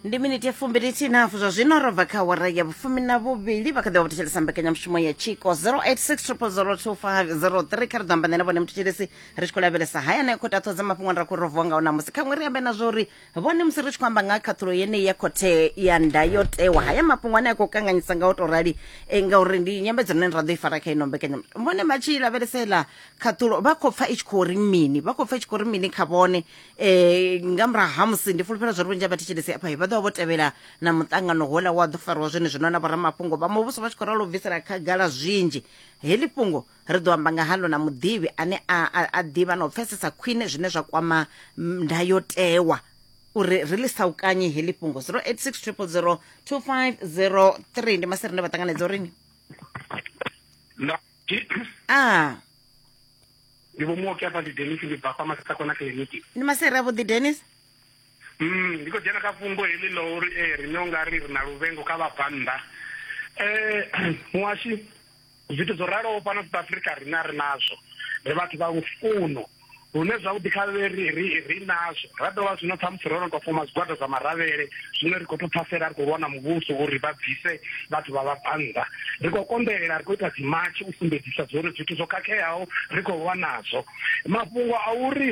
ndi miniti ya fumbili tinafu zwa zwino ro bva kha awara ya vhufumi na vhuvhili vha kha ḓi vha vhuthetshelesa mbekanyamushumo ya tshiko 0860025003 kha ri ḓo amba nene vhone muthethelesi ri tshi khou lavhelesa haya nayo khothe athodza mafhungo ane ra khou rovuwa ngao namusi khaṅwe ri ambe na zwo uri vhone musi ri tshi khou amba nga ha khaṱhulo yeneyi ya khothe ya ndayotewa haya mafhungo ane a khou kanganyisa nga u tou rali eh, ngauri ndi nyambedzo ine ra ḓo i fara kha ino mbekanya vhone vha tshi lavhelesela khaṱhulo vha khou pfa i tshi khou ri mini vha khou pfa i tshi khou ri mini kha vhone e nga murahu ha musi ndi fulufhela zwa ri vhunzhi ha vhathetshelesi afha vha ḓovha vho tevhela na muṱangano houḽa wa ḓo fariwa zwone zwino na vhoramafhungo vha muvhuso vha tshi khou ralo bvisela khagala zwinzhi heḽi fhungo ri ḓo amba nga halo na muḓivhi ane a ḓivha na u pfesesa khwine zwine zwa kwama ndayotewa uri ri ḽi saukanyi heḽi fhungo 086000 2503 ndi masere ne vha ṱanganedza urini a ndi vho muoki afha ndi denis ndi bva fha masakona kiliniki ndi masere avhuḓi denis mm ndi khou dzhena kha fhungo heḽi ḽa uri e eh, riṋe u nga ri ri na luvengo kha vhabvannḓa um eh, muhashi zwithu zwo raloho fhano south africa riṋe a ri nazwo ri vhathu vha lufuno lune zwavhuḓi kha ri nazwo ra dovha zwino ṱhamusi ro no tou foma zwigwada zwa maravhele zwino ri khou to phasela ri khou lwa na muvhuso uri vha bvise vhathu vha vha bannḓa ri khou konḓelela ri khou ita dzimatshi u sumbedzisa zwori zwithu zwo khakheaho ri khou lwa nazwo mafhungo a uri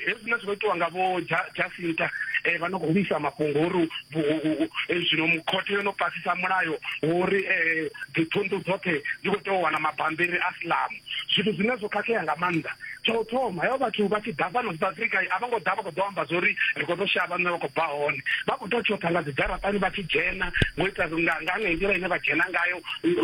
hezwina zwi khou itiwa nga vho jasinta um vha no khou lwisa mafhungo uri zwino khothe yo no pasisa mulayo uri um dziphunḓu dzoṱhe dzi khou tea u wana mabambiri a silamu zwithu zwine zwo khakhea nga maanḓa tsha u thoma hevha vhathu vha tshi ḓa fhano south africa a vho ngo ḓa vha khou ḓo amba zwa uri ri khou ḓo shavha nṋe vha khou bva hone vha khou tou tshoṱha nga dzidzharaṱani vha tshi dzhena ngo ita nga nga nga nḓila ine vha dzhena ngayo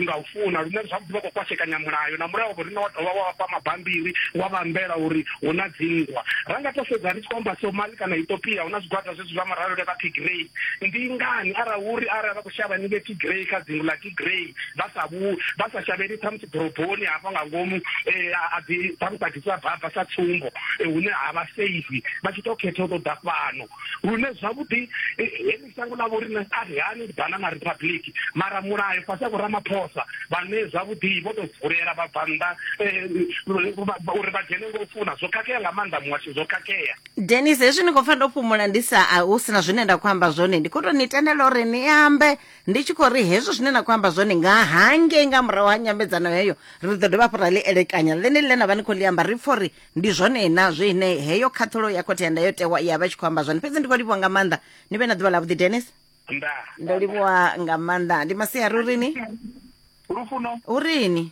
nga u funa lune zwavhuḓi vha khou kwashekanya mulayo na mulayo wavho rine wa dovha wa vhafha mabambiri wa vha ambela uri hu na dzinngwa ra nga to sedza ri tshi khou amba somali kana ethiopia hu na zwigwada zwezwi zwa muralule vha tigrey ndi ngani arali uri arali vha khou shavha ni vhe tigrey kha dzingu ḽa grey vha sa vhu vha sa shavheli ṱhamusi ḓoroboni hafha nga ngomu um a ḓi ṱhamusi a ḓisa baba sa tsumbo hune ha vha safe vha tshi to khetha u ṱoḓa fhano lune zwavhuḓi heḽi shango ḽa vho rine a ri hani ndi banana republic mara mulayo fhasi a vhoramaphosa vhane zwavhuḓi vho to vulela vha bva nnḓa uri vha dzhene ngo funa zwo khakhea nga maanḓa muhasho zwo khakhea denis hezwi ni khou pfa ndo fhumula ndi sa a hu sina zwine nda khou amba zwone ndi khou to ni tendela uri ni ambe ndi tshi khou ri hezwo zwine na khou amba zwone nga hangei nga murahu ha nyambedzano heyo ri ḓo dovha hafhu ra ḽi elekanya ḽene ḽine na vha ni khou ḽi amba ri pfha uri ndi zwone na zwine heyo khaṱhulo ya khothe ya ndayotewa ya vha tshi khou amba zwone fhedzi ndi khou livhuwa nga maanḓa ni vhe na ḓuvha ḽa vhuḓi denis ndo livhuwa nga maanḓa ndi masiari urini lufuno urini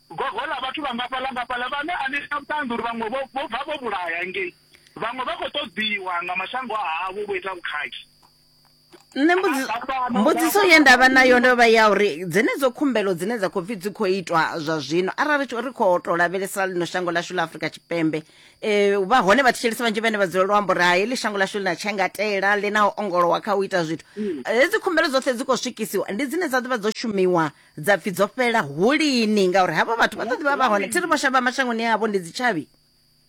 Gogo ḽa vhathu vha ngafha ḽa ngafha ḽa vhane a ni na vhuṱanzi uri vhaṅwe vho vho bva vho vhulaya ngei vhaṅwe vha khou ṱoḓiwa nga mashango a havho vho ita vhukhakhi nṋe mbudzi- Nga fhano, mbudziso nga ye fhano, ndavha nayo ndo vha ya uri dzenedzo khumbelo dzine dza khou pfi dzi khou itwa zwa zwino arali tshi- ri khou tou lavhelesa lino shango lashu ḽa afrika tshipembe um vha hone vhathetshelesi vhanzhi vhane vha dzula luambo uri hai heḽi shango lashu ḽi na tshengatela ḽi na u ongolowa kha u ita zwithu hedzi khumbelo dzoṱhe dzi khou swikisiwa ndi dzine dza ḓo vha dzo shumiwa dza pfi dzo fhela hu lini ngauri havho vhathu vha ḓo ḓivha vha hone thi ri vho shavha mashangoni avho ndi dzitshavhi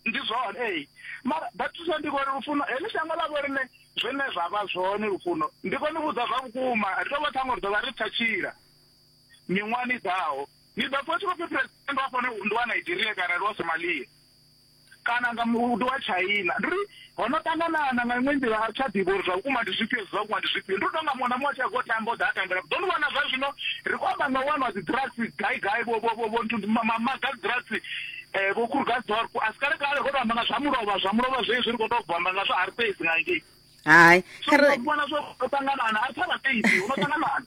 ndi zwone ee mara batusa ndi kone lufuno heḽi shango ḽa vho rine zwine zwa vha zwone lufuno ndi kone vhudza zwa vhukuma ri tou vha ṱhango ri ḓo vha ri tsa tshila miṅwahani ḓaho ni ḓo pfa tshi khou pfi president wa fhone ndi wa nigeria kana ndi wa somalia kana nga muhudo wa China. Ndi uri ho no ṱangana na nga iṅwe nḓila a ri tsha ḓivha uri zwa vhukuma ndi zwifhio zwa vhukuma ndi zwifhio. Ndi u tou nga muṅwe na muṅwe a tshi a go tamba u ḓa a tambela. Ḓo ni vhona zwa zwino ri khou amba nga u wanwa dzi drugs gai gai vho vho vho nthu maga drugs eh vho Krugersdorp a si kale kale ro tou amba nga zwa mulovha zwa mulovha zwezwi ri khou tou bva amba nga zwa Hartbees nga ngei. hayi vhona zwo ṱanganana a pfa vhabebi uno ṱanganana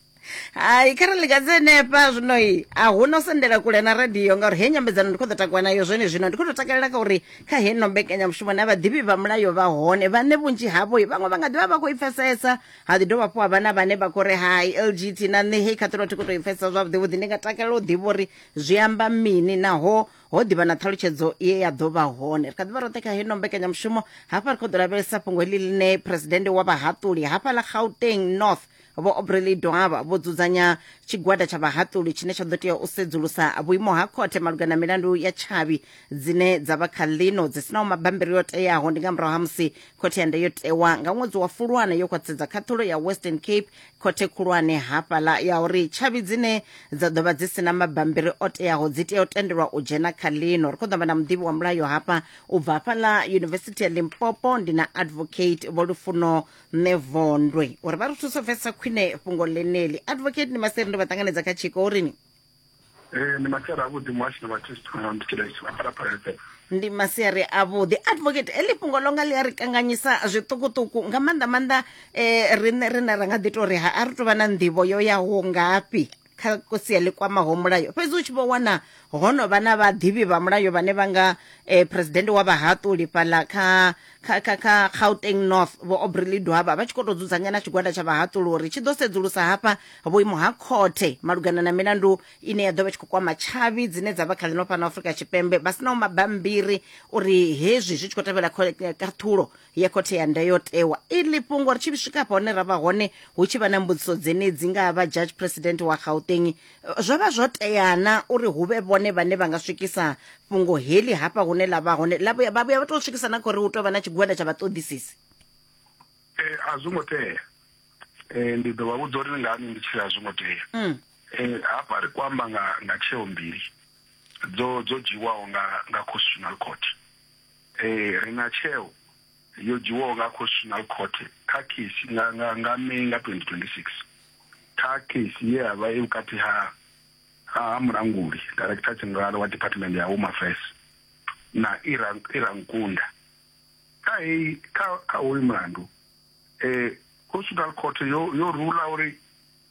hayi kha ri likadze henefha zwinoi a hu no sendela kule na radio ngauri he nyambedzano ndi khou ḓo takuwa nayo zwone zwino ndi khou tou takalela kha uri kha heno mbekanyamushumo na vhaḓivhi vha mulayo vha hone vhane vhunzhi havho vhaṅwe vha nga ḓivha vha khou i pfesesa ha ḓi dovha fho havha na vhane vha khou ri hai lgt na nṋe hei khaṱhulo thi khou tou i pfesesa zwavhuḓi vhuḓi ndi nga takalela u ḓivha uri zwi amba mini naho ho ḓivha na ṱhalutshedzo ye ya ḓo vha hone ri kha ḓivha roṱhe kha heno mbekanyamushumo hafha ri khou ḓo lavhelesa fhungo heḽi ḽine phuresidennde wa vhahaṱuli hafha ḽa gauteng north vho obreley doaba vho dzudzanya tshigwada tsha vhahaṱuli tshine tsha ḓo tea u sedzulusa vhuimo ha khothe malugana na milandu ya tshavhi dzine dza vha kha ḽino dzi sinaho mabambiri yo teaho ndi nga murahu ha musi khothe ya ndayotewa nga ṅwedzi wa fulwana yo khwaṱhisedza khaṱhulo ya western cape khothe khulwane hafhaḽa ya uri tshavhi dzine dza ḓo vha dzi si na mabambiri o teaho dzi tea u tendelwa u dzhena kha ḽino ri khou ḓo amba na muḓivhi wa mulayo hafha u bva hafhaḽa yunivesithi ya limpopo ndi na advocate vho lufuno nṋe vondwe uri vha ri thuso pfesesa khwine fhungo ḽeneli advocate ni maseri ndo vha ṱanganedza kha tshiko urini Ee, ndi masiari avhuḓi muhashi na vhathistu kana ndi tshila tshila phalaphala FM. ndi masiari avhuḓi advocate heḽi fhungo ḽo nga ḽi a ri kanganyisa zwiṱukuṱuku nga maanḓa maanḓa um riṋe rine ra nga ḓi tou ri ha a ri tou vha na nḓivho yo yaho ngafhi kha sia ḽi kwamaho mulayo fhedzi u tshi vho wana ho no vha na vhaḓivhi vha mulayo vhane vha nga um presidennde wa vhahaṱuli fhaḽa kha kha kha kha gauteng north vho obrely dwaba vha tshi khou tou dzudzanya na tshigwada tsha vhahaṱuluri tshi ḓo sedzulusa hafha vhuimo ha khothe malugana na milandu ine ya ḓo vha tshi khou kwama tshavhi dzine dza vha kha ḽino fhano afrika tshipembe vha sinaho mabambiri uri hezwi zwi tshi khou tevhela kaṱhulo ya khothe ya ndayotewa iḽi fhungo ri tshi swika hafha hone ra vha hone hu tshi vha na mbudziso dzenedzi nga ha vha judge president wa gauteng Zwo vha zwo tea na uri hu vhe vhone vhane vha nga swikisa fhungo heḽi hafha hune ḽa vha hone vha vhuya vha tou swikisa na kha uri hu tou vha na tshigwada tsha vhaṱoḓisisi? Ee, a zwo ngo tea. Ee, ndi ḓo vha vhudza uri ngani ndi tshi ri a zwo ngo tea. Mm. Ee, hafha ri khou amba nga nga tsheo mbili dzo dzo dzhiwaho nga nga Constitutional Court. Ee, ri na tsheo yo dzhiwaho nga Constitutional Court kha case nga nga nga May nga 2026 kha case ye ya vha i vhukati ha ha mulanguli director general wa department ya Home Affairs na Ira Ira Nkunda kha heyi kha kha hoyu mulandu eh Constitutional Court yo yo rula uri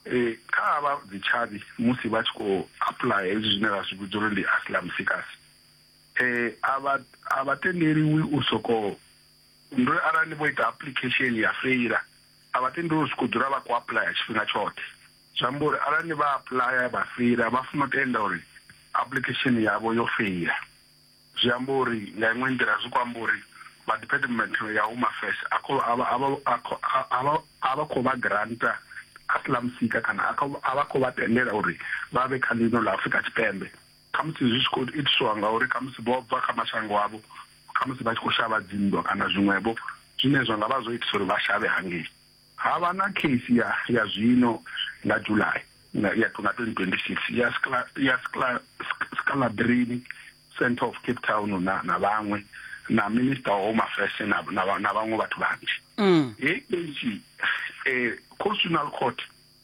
eh kha vha dzitshavhi musi vha tshi khou apply hezwi zwine ra zwi vhidza uri ndi asylum seekers eh a vha a vha tendeliwi u soko ndo arali ni vho ita application ya feila a vha tendeliwi u soko dzula vha khou apuḽaya tshifhinga tshoṱhe zwi amba uri arali ni vha apuḽaya vha feila vha funa u tenda uri application yavho yo feila zwi amba uri nga iṅwe nḓila zwi khou amba uri vha department ya home affairs a khou a vha- a vha- a khou- a- a vha- a vha khou vha granta asylum seeker kana a khou- a vha khou vha tendela uri vha vhe kha ḽino ḽa afurika tshipembe Khamusi zwi tshi khou itiswa ngauri khamusi vho bva kha mashango avho, khamusi vha tshi khou shavha dzinndwa kana zwiṅwevho zwine zwa nga vha zwo itisa uri vha shavhe hangei. Ha vha na kheisi ya ya zwino nga July nga ya 2026 ya Skla, ya Skla, Scalabrini Centre of Cape Town na, na vhaṅwe na Minister wa Home Affairs na, na, na vhaṅwe vhathu vhanzhi. Hei kheisi eh, Constitutional Court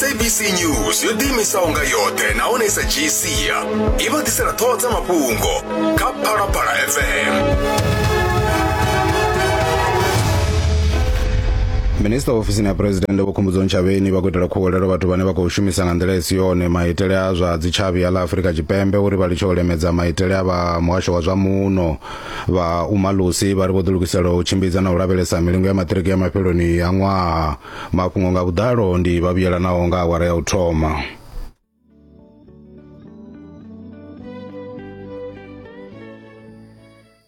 sabc news yo ḓiimisaho nga yoṱhe nahone sa gcia i vha ḓisela ṱhoho dza mafhungo kha phalaphala fm minista wa ofisini ya phuresidennde vho khumbudzo ntshavheni vha khou itela khuwelelo vhathu vhane vha khou shumisa nga nḓila i si yone maitele a zwa dzitshavhi a ḽa afurika tshipembe uri vha litshe u lemedza maitele a vha muhasho wa zwa muno vha umalusi vha ri vho ḓilugisela u tshimbidza na u lavhelesa milingo ya maṱiriki ya mafheloni ya ṅwaha mafhungo nga vhuḓalo ndi vha vhuyelanaho nga awara ya u thoma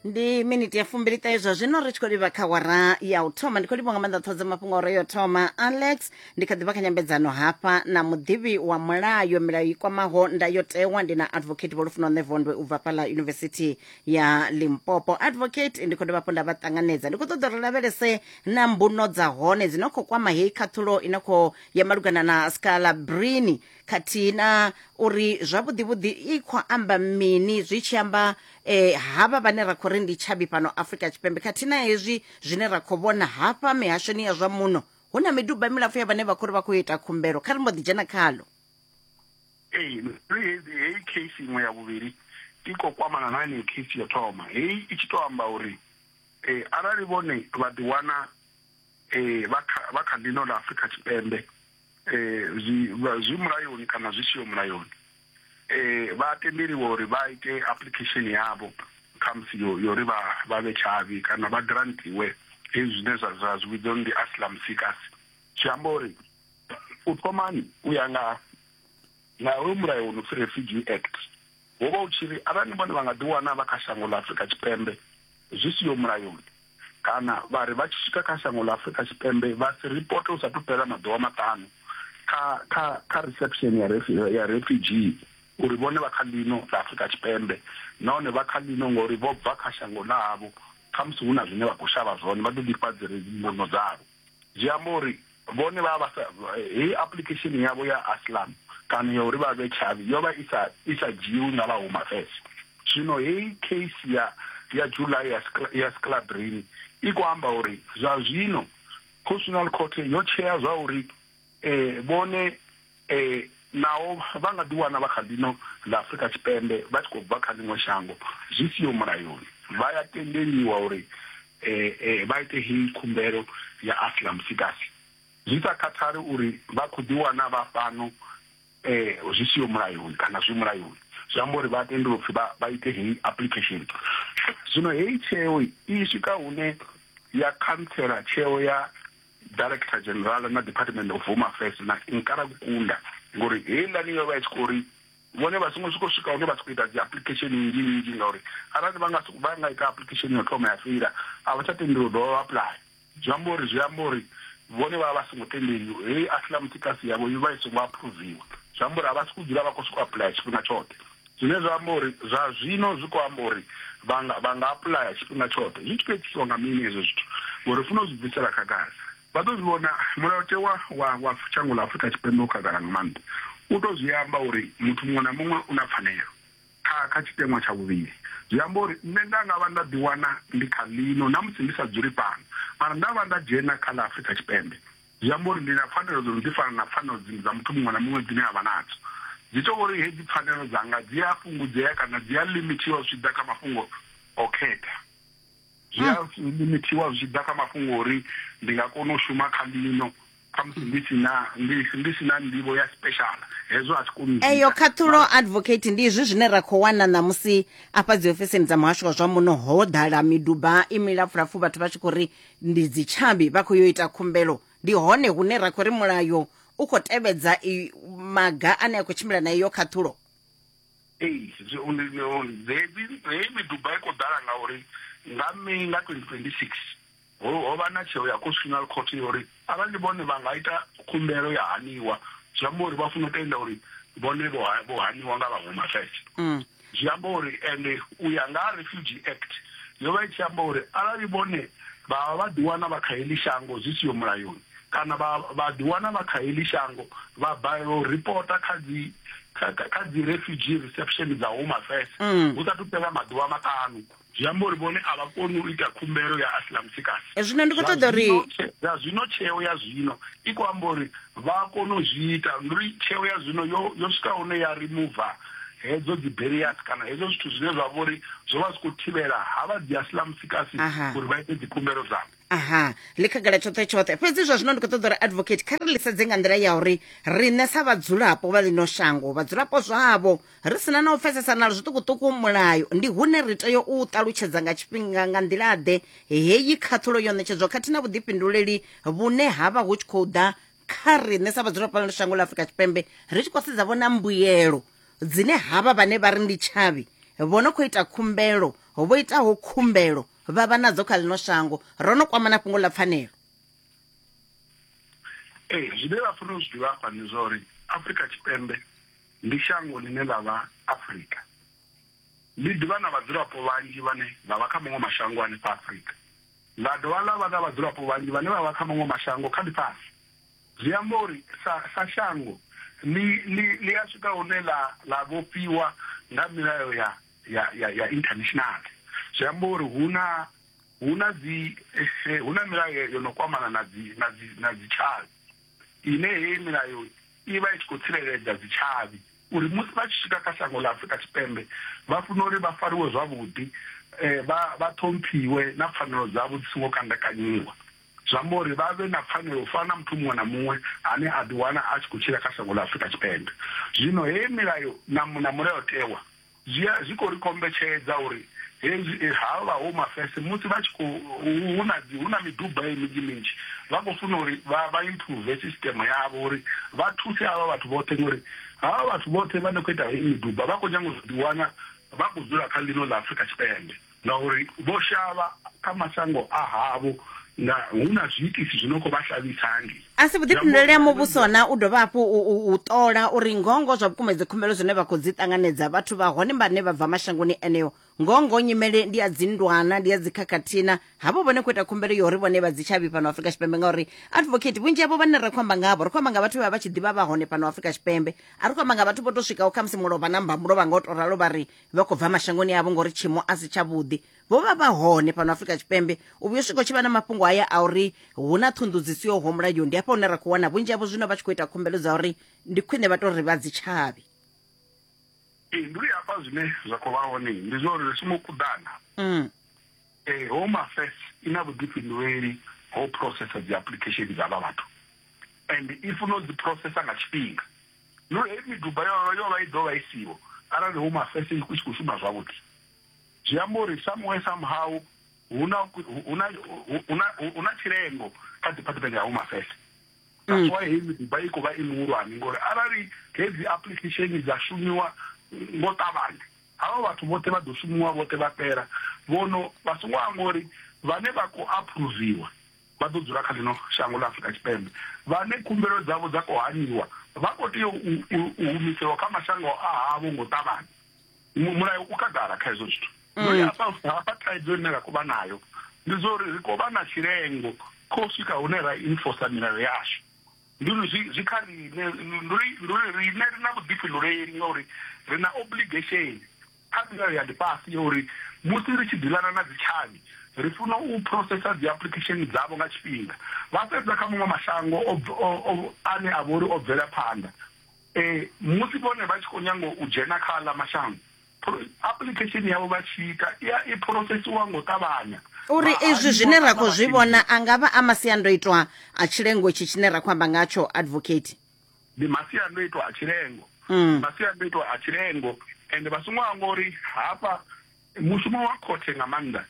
ndi miniti ya fumbili ṱahe zwa zwino ri tshi khou livha kha wara ya u thoma ndi khou livha nga maanḓa ṱhoho dza mafhungo ore yo thoma alex ndi kha ḓivha kha nyambedzano hafha na muḓivhi wa mulayo milayo i kwamaho ndayotewa ndi na advocate vholufuno nevondwe u bva fhala yunivesithi ya limpopo advocate ndi khou dovha hafhu nda vha ṱanganedza ndi khou ṱoḓa uri lavhelese na mbuno dza hone dzi no khou kwama heyi khaṱhulo i no khou ya malugana na scalabrini khathihi na uri zwavhuḓivhuḓi i khou amba mini zwi tshi amba eh, havha vhane ra khou ri ndi tshabi fhano afrika tshipembe khathihi na hezwi zwine ra khou vhona hafha mihashoni ya zwa muno hu na miduba milapfu ya vhane vha khou ri vha khou ita khumbelo kha ri mbo ḓi dzhena khalo ee heyi case iṅwe ya vhuvhili i khou kwamana na yeneyo case yo thoma heyi i tshi to amba uri um arali vhone vha ḓiwana um vha kha ḽino ḽa afrika tshipembe um zwi zwi mulayoni kana zwi siho mulayoni um vha tendeliwa uri vha ite application yavho khamusi yo yo ri vha vha vhe tshavhi kana vha grantiwe hezwi zwine zwa zwa zwi vhidzwa ndi asylum seekers zwi amba uri u thomani u ya nga nga hoyu mulayo wo no pfi refugee act wo vha u tshi ri arali vhone vha nga ḓi wana vha kha shango ḽa afurika tshipembe zwi siho mulayoni kana vha ri vha tshi swika kha shango ḽa afurika tshipembe vha si ripoto u sa thu fhela maḓuvha maṱanu kha kha kha reception ya ya refugee uri vhone vha kha ḽino ḽa afurika tshipembe nahone vha kha ḽino ngori vho bva kha shango ḽavho khamusi hu na zwine vha khou shavha zwone vha ḓo ḓifha dzi mbuno dzavho Zwi amba uri vhone vha vha sa heyi application yavho ya asylum kana ya uri vha vhe tshavhi yo vha isa isa dzhiwi nga vha home affairs zwino heyi case ya ya July ya ya Sclabrini i kho amba uri zwa zwino constitutional court yo tshea zwa uri Ee, vhone ee, naho vha nga ḓiwana vha kha ḽino ḽa Afrika Tshipembe vha tshi khou bva kha ḽiṅwe shango zwi siho mulayoni, vha ya tendeliwa uri ee, vha ite heyi khumbelo ya asylum seekers zwi sa khathali uri vha khou ḓiwana vha fhano ee, zwi siho mulayoni kana zwi mulayoni. Zwi amba uri vha tendelwa upfi vha vha ite heyi application. Zwino heyi tsheo i swika hune ya khantsela tsheo ya. director general na department of home affairs na nkara kukunda ngori heiḽani yo vha i tshi khou ri vhone vha songo swika swika hune vha tshi khou ita dzi application nnzhi nnzhi ngauri arali vha nga vha nga ita application yo thoma ya feila a vha tsha tendeli u dovha vha apply zwi amba uri zwi amba uri vhone vha vha songo tendeliwa heyi aslam tikasi yavho yo vha i songo approviwa zwi amba uri a vha si ku dzula vha khou sokou apply tshifhinga tshoṱhe Zwine zwa amba uri zwa zwino zwi khou amba uri vha nga vha nga apuḽaya tshifhinga tshoṱhe. Zwi tshi khou itiswa nga mini hezwo zwithu? Ngori funa u zwi bvisela khagala. Vha ḓo zwi vhona, mulayotewa wa wa shango ḽa Afrika Tshipembe u khagala nga maanḓa. U tou zwi amba uri muthu muṅwe na muṅwe u na pfanelo kha kha tshiteṅwa tsha vhuvhili. Zwi amba uri nṋe nda nga vha nda ḓiwana ndi kha ḽino na musi ndi sa dzuli fhano, mara nda vha nda dzhena kha ḽa Afrika Tshipembe. Zwi amba uri ndi na pfanelo dzo no ḓi fana na pfanelo dziṅwe dza muthu muṅwe na muṅwe dzine a vha nadzo. Zwi tou uri hedzi pfanelo dzanga dzi a fhungudzea kana dzi a limithiwa zwi tshi ḓa kha mafhungo o khetha. Zwi a limithiwa zwi tshi ḓa kha mafhungo uri ndi nga kona u shuma kha ḽino khamusi ndi si na ndi ndi si na nḓivho ya special hezwo a thi koni u eyo khaṱhulo advocate ndi izwi zwine ra khou wana ṋamusi afha dzi ofisini dza muhasho wa zwa muno ho ḓala miduba i milapfulapfu vhathu vha tshi khou ri ndi dzitshavhi vha khou yo ita khumbelo ndi hone hune ra khou ri mulayo u khou tevhedza maga ane a khou tshimbila na iyo khaṱhulo ee heyi miduba i khou ḓala ngauri nga may nga 2026 ho vha na tsheo ya constitutional court yo uri arali vhone vha nga ita khumbelo ya haniwa zwi amba uri vha funa u tenda uri vhone vho haniwa nga vhaṅwe mafese mm. Zwi amba uri, ende u ya nga ha Refugee Act, yo vha i tshi amba uri arali vhone vha vha vha ḓiwana vha kha heḽi shango zwi siho mulayoni kana vha vha ḓiwana vha kha heḽi shango vha balelwa u ripota kha dzi kha dzi Refugee Reception dza Home Affairs hu sathu fhela maḓuvha maṱanu. zwi amba uri vhone a vha koni u ita khumbelo ya asylum seekers zwino ndi khou ṱoḓa uri zwa zwino tsheo ya zwino i khou amba uri vha a kona u zwi ita ndi uri tsheo ya zwino yo yo swika hune ya remova hedzo dzi barriers kana hedzo zwithu zwine zwa vha uri zwo vha zwi khou thivhela ha vha dzi asylum seekers uri vha ite dzikhumbelo dzavho aha ḽi khagala tshoṱhe tshoṱhe fhedzi zwa zwino ndi khou ṱoḓa uri advocate kha ri ḽi sedze nga nḓila ya uri riṋe sa vhadzulapo vha ḽino shango vhadzulapo zwavho ri sina na u pfesesa na zwiṱukuṱuku mulayo ndi hune ri tea u ṱalutshedza nga tshifhinga nga nḓila-ḓe heyi khaṱhulo yo ṋetshedzwa khathihi na vhuḓifhinduleli vhune ha vha hu tshi khou ḓa kha riṋe sa vhadzula fhano shango ḽa afurika tshipembe ri tshi khou sedza vhona mbuyelo dzine havha vhane vha ri ndi tshavhi vho no khou ita khumbelo vho itaho khumbelo vha vha nadzo kha ḽino shango ro no kwamana fhungo ḽa pfanelo ee zwine vha fanela u zwi ḓivha afha ndi zwa uri afurika tshipembe ndi shango ḽine ḽa vha Afrika. Ḽi ḓi vha na vhadzulapo vhanzhi vhane vha vha kha maṅwe mashango a ḽifha Afrika, ḽa dovha ḽa vha na vhadzulapo vhanzhi vhane vha vha kha maṅwe mashango kha ḽifhasi. Zwi amba uri sa sa shango ḽi ḽi ḽi a swika hune ḽa ḽa vhofhiwa nga milayo ya ya ya ya international. Zwi amba uri hu na hu na dzi hu na milayo yo no kwamana na dzi na dzi na dzi tshavhi. ine heyi milayo i vha i tshi khou tsireledza dzitshavhi uri musi vha tshi swika kha shango ḽa Afurika Tshipembe vha funa uri vha fariwe zwavhuḓi eh, vha vha ṱhomphiwe na pfanelo dzavho dzi songo kandakanyiwa zwi amba uri vha vhe na pfanelo u fana na muthu muṅwe na muṅwe ane a ḓiwana a tshi khou tshila kha shango ḽa Afurika Tshipembe zwino heyi milayo na mulayotewa Zwi a, zwi khou ri kombetshedza uri hezwi eh, ha vha ho mafese musi vha tshi khou hu na hu na miduba ye minzhi minzhi vha khou funa uri vha vha improve system yavho uri vha thuse avha vhathu vhoṱhe ngori havha vhathu vhoṱhe vha ne khou ita hei miduba vha khou nyanga u ḓi wana vha khou dzula kha ḽino ḽa Afrika Tshipembe Ngauri vho shavha kha mashango a havho nga hu na zwiitisi zwi no khou vha shavhisa hangei. A si vhuḓifhinduleli ha muvhuso na u dovha hafhu u ṱola uri ngoho ngoho zwa vhukuma dzi khumbelo zwine vha khou dzi ṱanganedza vhathu vha hone vhane vha bva mashangoni eneo ngoho ngoho nyimele ndi ya dzindwana ndi ya dzikhakhathina havho vhone khou ita khumbelo ya uri vhone vha dzi tshavhi fhano Afrika Tshipembe ngauri advocate vhunzhi havho vhane ra khou amba ngavho ri khou amba nga vhathu vha vha tshi ḓivha vha hone fhano Afrika Tshipembe a ri khou amba nga vhathu vho to swikaho khamusi mulovha na mbamulovha nga u to ralo vha ri vha khou bva mashangoni avho ngori tshiimo a si tshavhuḓi vho vha vha hone fhano afrika tshipembe u vhuyo swika u tshi vha na mafhungo haya a uri hu na ṱhunḓu dzi siyoho mulayo ndi hafha hune ra khou wana vhunzhi havho zwino vha tshi khou ita khumbelo dza uri ndi khwine vha to ri vha dzi tshavhi ndi hafha zwine zwa khou vha hone ndi zwa uri ri songo kuḓana um home affairs i na vhuḓifhinduleli ho processa dzi application dza vha vhathu and i funa u dzi processa nga tshifhinga Yo heyi miduba yo yo vha i ḓo vha i siho arali hu mafese i tshi khou shuma zwavhuḓi zwi amba uri somewhere somehow hu na hu na hu na hu na tshilengo kha department ya home affairs that's mm. why heyi miduba i khou vha i muhulwane ngori arali hedzi application dza shumiwa ngo ṱavhanya havha vhathu vhoṱhe vha ḓo shumiwa vhoṱhe vha fhela vhono vha songo amba uri vhane vha khou aphuruviwa vha ḓo dzula kha ḽino shango ḽa Afrika Tshipembe vhane khumbelo dzavho dza khou haniwa vha khou tea u humiselwa kha mashango a havho ngo ṱavhanya mulayo u khagala kha hezwo zwithu mm. no ya south hafha thaidzo ine ra khou vha nayo ndi zwa uri ri khou vha na tshilengo kho swika hune ra enforcer milayo yashu ndi uri zwi kha riṋe ndi uri riṋe ri na vhuḓifhinduleli ngauri ri na obligation Kha milayo ya ḽifhasi ya uri musi ri tshi ḓilana na dzitshavhi, ri funa u phurosesa dziapuḽikhesheni dzavho nga tshifhinga vha sedza kha maṅwe mashango ane a vha uri o bvela phanḓa. Musi vhone vha tshi khou nyanga u dzhena kha aḽa mashango, apuḽikhesheni yavho vha tshi ita i ya i phurosesiwa nga u ṱavhanya. U ri izwi zwine ra khou zwi vhona a nga vha a masiandoitwa a tshilengo itshi tshine ra khou amba ngatsho, Advocate. ndi masiandoitwa a tshilengo mm. masiandoitwa a tshilengo ende vha songo amba uri hafha mushumo wa khothe nga maanḓa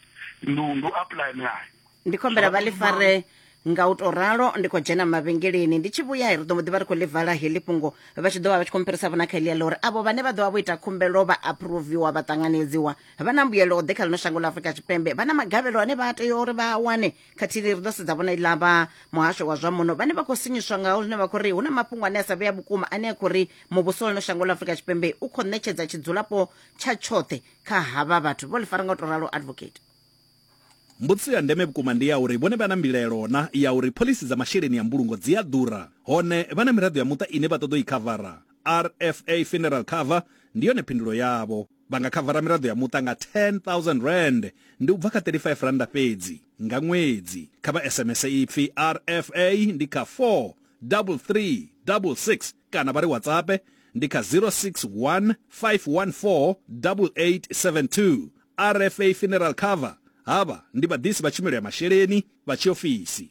ndi u- ndi u apply milayo ndi khou humbela vha ḽi fare nga u tou ralo ndi khou dzhena mavhengeleni ndi tshi vhuya ri ḓo mbo ḓi vha ri khou ḽi vala heḽi fhungo vha tshi ḓo vha vha tshi khou mpherisa vhona kha heḽia ḽa uri avho vhane vha ḓo vha vho ita khumbelo vha aproviwa vha ṱanganedziwa vha na mbuyelo ḓe kha ḽino shango ḽa afurika tshipembe vha na magavhelo ane vha tea uri vha a wane khathihi ri ḓo sedza vhona iḽa vha muhasho wa zwa muno vhane vha khou sinyiswa ngaho zwine vha khou ri hu na mafhungo ane a sa vhea vhukuma ane a khou ri muvhuso wa ḽino shango ḽa afurika tshipembe u khou ṋetshedza tshidzulapo tsha tshoṱhe kha havha vhathu vho ḽi fara nga u tou ralo advocate Mbudziso ya ndeme vhukuma ndi ya uri vhone vha na mbilaelo na ya uri phoḽisi dza masheleni a mbulungo dzi a ḓura, hone vha na miraḓo ya muṱa ine vha ṱoḓa u i khavara? RFA Funeral Cover ndi yone phindulo yavho. Vha nga khavara miraḓo ya muṱa nga R10,000, ndi u bva kha R35 fhedzi, nga ṅwedzi. Kha vha SMS ipfi RFA ndi kha 43366 kana vha ri WhatsAppe ndi kha 061 514 8872. RFA Funeral Cover, Havha ndi vhaḓisi vha tshumelo ya masheleni vha tshiofisi.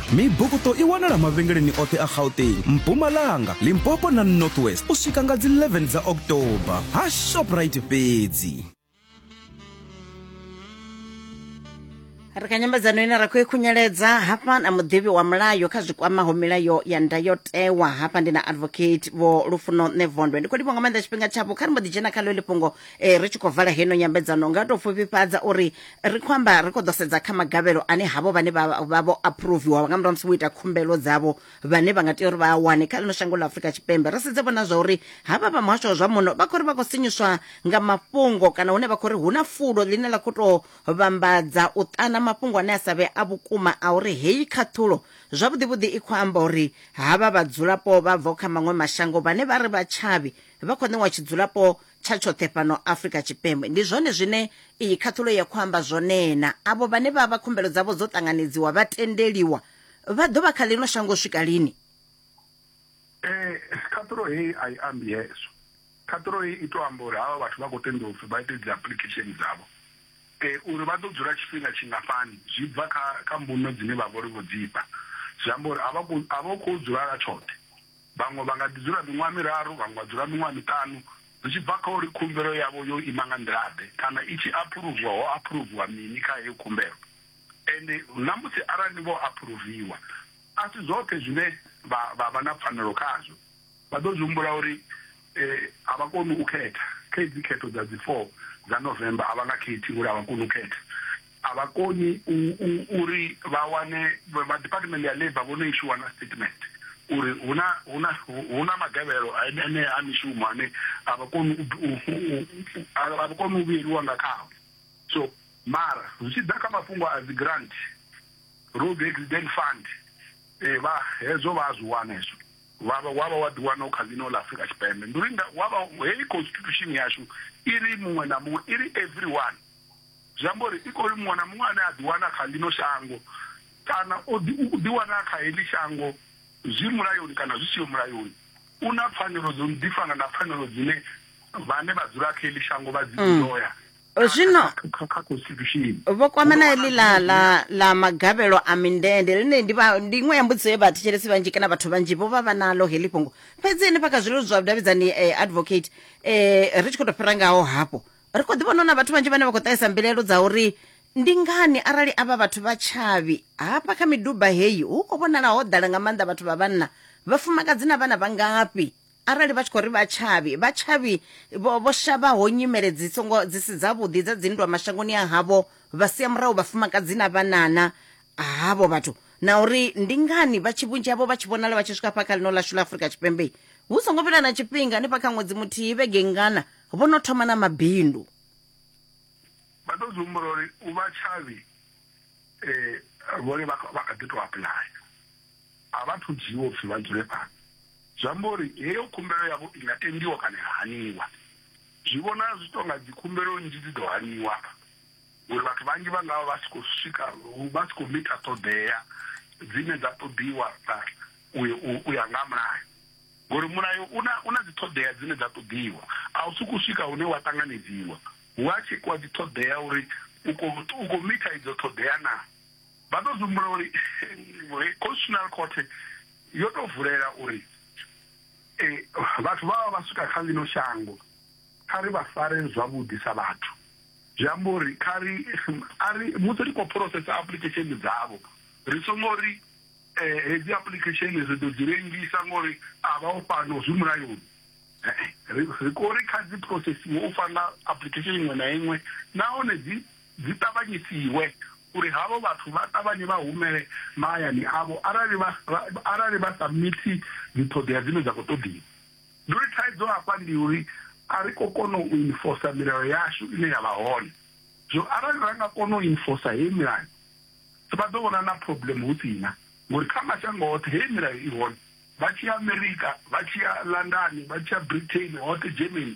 Mibukuṱo i wanala mavhengeleni oṱhe a Gauteng, Mpumalanga, Limpopo na North West u swika nga dzi 11 dza October ha Shoprite fhedzi. ri kha nyambedzano ine ra khou i khunyeledza hafha na muḓivhi wa mulayo kha zwi kwamaho milayo ya ndayotewa hafha ndi na advocate vho lufuno nṋe vondwe ndi khou livho nga maanḓa tshifhinga tshavho kha ri mbo ḓi dzhena kha ḽo ḽifhungo eh, ri tshi khou vala heno nyambedzano nga tou pfufhifhadza uri Ri khou amba ri khou ḓo sedza kha magavhelo ane havho vhane vha vho aphuruviwa nga murahu musi vho ita khumbelo dzavho vhane vha nga tea uri vha a wane kha ḽino shango ḽa Afrika Tshipembe ri sedze vhona zwa uri havha vha muhasho wa zwa muno vha khou ri vha khou sinyuswa nga mafhungo kana hune vha khou ri hu na fulo ḽine ḽa khou tou vhambadza u ṱana mafhungo ane a sa vhe a vhukuma a uri heyi khaṱhulo zwavhuḓi vhuḓi i khou amba uri havha vhadzulapo vha bvaho kha maṅwe mashango vhane vha ri vha tshavhi vha khou ṋewa tshidzulapo tsha tshoṱhe fhano afrika tshipembe ndi zwone zwine iyi khaṱhulo ya khou amba zwonena avho vhane vha vha khumbelo dzavho dzo ṱanganedziwa vha tendeliwa vha ḓo vha kha ḽino shango swika lini eh, khaṱhulo heyi a i ambi hezwo khaṱhulo heyi i to amba uri havha vhathu vha khou tenda upfi vha ite dzi application dzavho eh, uri vha ḓo dzula tshifhinga tshingafhani zwi bva kha kha mbuno dzine vha vhori vho dzifha zwi amba uri a vha khou dzula la tshoṱhe Vhaṅwe vha nga ḓi dzula miṅwaha miraru, vhaṅwe vha dzula miṅwaha miṱanu, zwi tshi bva kha uri khumbelo yavho yo ima nga nḓila-ḓe kana i tshi aphuruvwa ho aphuruvhiwa mini kha heyo khumbelo. Ende na musi arali vho aphuruvhiwa, a si zwoṱhe zwine vha vha vha na pfanelo khazwo. Vha ḓo zwi humbula uri a vha koni u khetha. Kha hedzi khetho dza dzi 4 dza November, a vha nga khethi ngori a vha koni u khetha. a vha koni uri vha wane vha department ya labour vho no ishuwa na statement uri huna huna huna magavhelo ane a mishumo ane a vha koni a vha koni u vhuyeliwa nga khawo so mara zwi tshi ḓa kha mafhungo a dzi grant road accident fund eh vha hezwo vha zwi wana hezwo wa vha wa vha wa ḓiwana u kha ḽino ḽa afrika tshipembe ndi uri wa vha heyi constitution yashu i ri muṅwe na muṅwe i ri everyone Zwi amba uri i khou ri muṅwe na muṅwe ane a ḓiwana kha ḽino shango kana o ḓiwana a kha heḽi shango zwi mulayoni kana zwi siho mulayoni u na pfanelo dzo no ḓi fana na pfanelo dzine vhane vha dzula kha heḽi shango vha dzi enjoya mm. zwino kha constitution vho kwama na heḽi ḽa ḽa ḽa magavhelo a mindende ḽine ndi vha ndi iṅwe ya mbudziso ye vhathetshelesi vhanzhi kana vhathu vhanzhi vho vha vha naḽo heḽi fhungo fhedzi henefha kha zwilelo zwa vhudavhidzani eh, advocate eh, ri tshi khou tou fhira ngaho hafho ri khou ḓivhona na vhathu vhanzhi vhane vha khou ṱahisa mbilaelo dza uri ndi ngani arali avha vhathu vha tshavhi hafha kha miduba heyi hu khou vhonala ho ḓala nga maanḓa vhathu vha vhanna vhafumakadzi na vhana vha ngafhi arali vha tshi khou ri vha tshavhi vha tshavhi vho shavhaho nyimele dzi songo dzi si dzavhuḓi dza dzinndwa mashangoni a havho vha sia murahu vhafumakadzi na vhanana havho vhathu na uri ndi ngani vha tshi vhunzhi havho vha tshi vhonala vha tshi swika fha kha ḽino ḽashu ḽa afurika tshipembe hu songo fhela na tshifhinga hanefha kha ṅwedzi muthihi vhege ngana vho no thoma na mabindu vha ḓo zwi humbula uri u vha tshavhi um vhone vha kha ḓi to apuḽaya a vha thu dzhiiwa upfhi vha dzule fhano zwi amba uri heyo khumbelo yavho i nga tendiwa kana ya haniwa zwi vhona zwi to nga dzi khumbelo nnzhi dzi ḓo haniwa hafha uri vhathu vhanzhi vha ngavha vha si khou swika vha si khou mita ṱhoḓea dzine dza ṱoḓiwa u ya nga mulayo Ngori mulayo u na u na dziṱhoḓea dzine dza ṱoḓiwa, a u sokou swika hune wa ṱanganedziwa. Hu a tshekhiwa dziṱhoḓea uri u khou u khou mitha idzo ṱhoḓea naa. Vha ḓo zwi humbula uri Constitutional Court yo tou vulela uri vhathu vha vha vha swika kha ḽino shango kha ri vha fare zwavhuḓi sa vhathu, zwi amba uri kha ri a ri musi ri khou phurosesa application dzavho ri songo ri. eh, hedzi application ri ḓo dzi lengisa ngori a vha o fhano zwi mulayoni eh, ri khou ri kha dzi processiwe u fana application iṅwe na iṅwe nahone dzi dzi ṱavhanyisiwe uri havho vhathu vha ṱavhanye vha humele mahayani avho arali vha arali vha submithi dziṱhoḓea dzine dza khou ṱoḓiwa ndi uri thaidzo hafha ndi uri a ri khou kona u enforcer milayo yashu ine ya vha hone zwo arali ra nga kona u enforcer heyi milayo vha ḓo vhonana na problem hu si na ngori kha mashango oṱhe heyi milayo i hone vha tshi ya America vha tshi ya London vha tshi ya Britain hoṱhe Germany